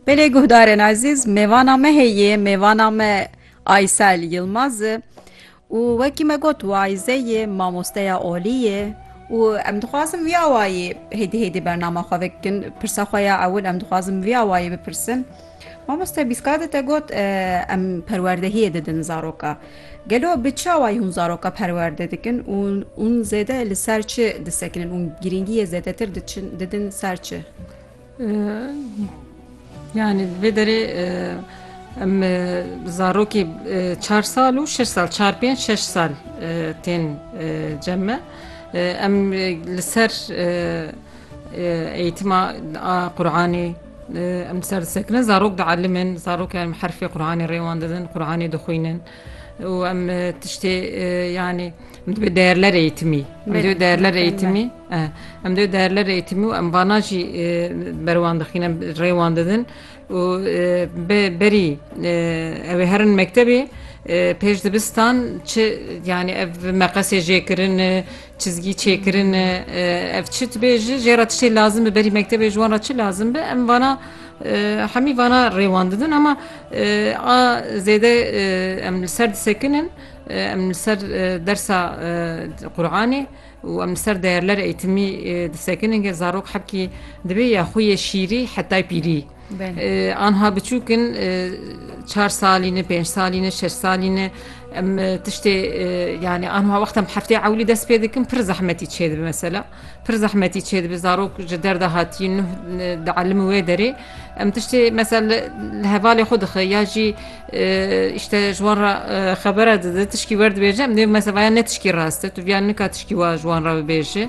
Belê guhdarên ezîz mêvana me heye mêvana me Aysel Yilmaz e û wekî me got wayze ye mamosteya olî ye û em dixwazin wî awayî hêdî hêdî bernama xwe vekin pirsa xwe ya ewil em dixwazin wî awayî bipirsin. Mamoste Bîska de te got em perwerdehiyê didin zaroka. Gelo bi çawayî hûn zaroka perwerde dikin û hûn zêde li ser çi disekinin û girîngiyê zêdetir didin ser çi? Yanî li vê derê em zarokê çar sal û şeş sal çar pênc şeş sal tên cem me. Em li ser eğîtima Quranê, Em ser disekinin, zarok dielîmin, zarok em herfê Quranê rê wan didin, Quranê dixwînin û em e, tiştê e, yanî em divê değerler eğitimî, em divê değerler eğitimî, e, em divê değerler eğitimî û em vana jî e, ber wan dixîn, em rê wan didin û e, be berî e, ew ê herin mektebê e, pêş dibistan çi yanî ev meqesê jêkirin e, Çizgî çêkirin ev çi tibê ji jê re tiştê lazim bi berî mektebê ji wan re çi lazim bi em vana hemî vana rêwan didin ama a zêde em li ser disekinin em li ser dersa Qur'anê û em li ser değerler eğitimî disekinin gel zarok hebkî dibê ya xwe yê şîrî hetay pîrî. Anha biçûk in çar salî ne pênc salî ne şeş salî ne em tiştê yanî anha wexta em heftê ewlî dest pê dikin pir zehmetî çê dibi mesela pir zehmetî çê dibi zarok ji derda hatî nuh di elim wê derê em tiştê mesel li hevalê xwe dixe ya jî îşte ji wan re xebera dide tişkî werdibêje em dê mesevaya ne tişkî rast e tu viya nika tişkî wa ji wan re bibêje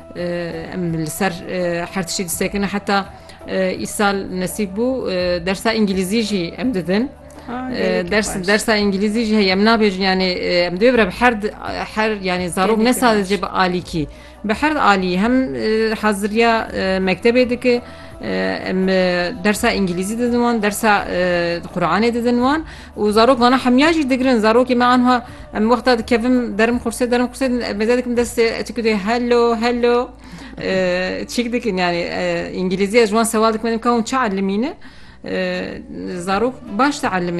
Em li ser her tiştî disekin heta îsal nesîb bû dersa îngilîzî jî em didin. Ders dersa îngilîzî jî heye em nabêjin yanê em dê bire her her yanê zarok ne sadece bi alîkî bi her alî hem haziriya mektebê dike em dersa îngilîzî didin wan dersa Quranê didin wan Û zarok vana hemya jî digirin. Zarokê me anha em wexta dikevim derim qursê derim qursê mêze dikim destê çik dê hello hello çik dikin yani îngilîzî ez ji wan sewal dikim ka hûn çi elimîne zarok baş de elimin.